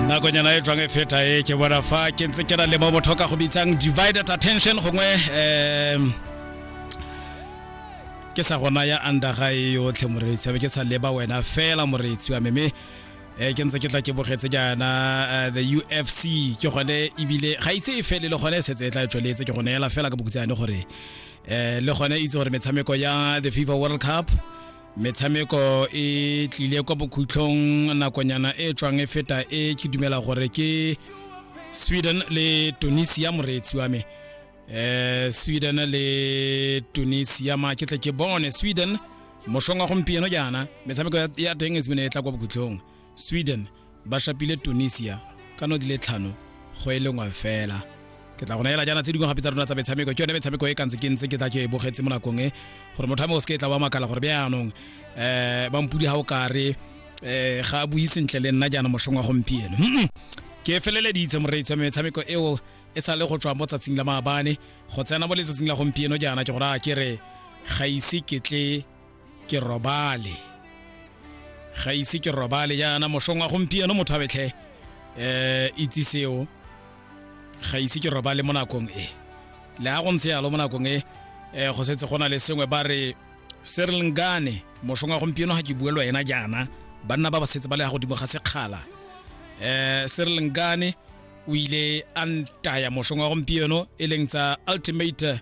nakonyana e tswang e feta e ke bona fa ke ntse ke na le mo motho ka go bitsang divided attention gongwe um ke sa gona ya andaga e yotlhe moreetsi abe ke sa leba wena fela moreetsi wa meme um ke ntse ke tla ke bogetse jaana eh, the ufc ke gone ebile ga itse e fele le gone e setse e tla e tsweletse ke gone ela fela ka bokutsane gore um le gone itse gore metshameko ya the fifa world cup metshameko e tlile kwa bokhutlhong nakonyana e tswang e feta e ke dumela gore ke sweden le tunisia moreetsi wa me eh sweden le tunisia ma ke tle ke bone sweden moshong wa gompieno jaana metshameko ya teng e simene e tla kwa bokhutlhong sweden ba shapile tunisia ka no di le tlhano go e lengwe fela ke tla go neela jaana tse dingwe gape tsa rona tsa metshameko ke yone metshameko e kantse ke ntse ke tla ke e bogetse mo nakong e gore motho a mo o se ke tla wa makala gore bjaanong um ba mpudi ga o kare um ga a bui sentle le nna jaana mošong wa gompieno ke feleleditse moreitse metshameko eo e sa le go tswa mo tsatsing la maabane go tsena mo letsatsing la gompieno jaana ke gore a ke re ga ise ketle ke robale ga ise ke robale jaana mosong wa gompieno motho a betlhe um itse seo ga ise ke robale mo nakong e le a go ntse yalo mo nakong e um go setse go na le sengwe ba re serlngane mosong wa gompieno ga ke buelwa ena jaana banna ba ba setse ba le ya godimo ga sekgala um serlngane o ile a ntaya mosong wa gompieno e leng tsa ultimate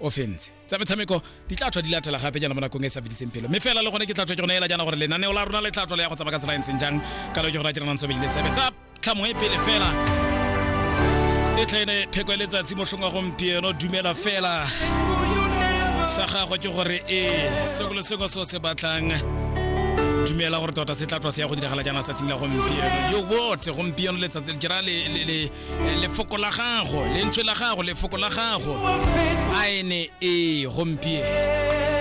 o fentse tsa metshameko di tla tswa di latela gape jana mo nakong e sa fediseng pelo mme fela le gone ke tla tswa ke gone ela jana gore lenaneo la rona le tla tswa le ya go tsamaya ka tsela e ntseng jang ka lo ke gore ke renang tsobedile tsebe tsa tlhamo e pele fela e tlene pheko e letsatsi mošong wa gompieno dumela fela sa gagwe ke gore e sengwe le sengwe seo se batlang dumela gore tota se tla tswa se ya go diragala jaana tsatsing la gompieno yo bote gompieno letsatsi ke ra le Eh, lefoko la gago lentswe la gago lefoko la gago a ene ee gompieno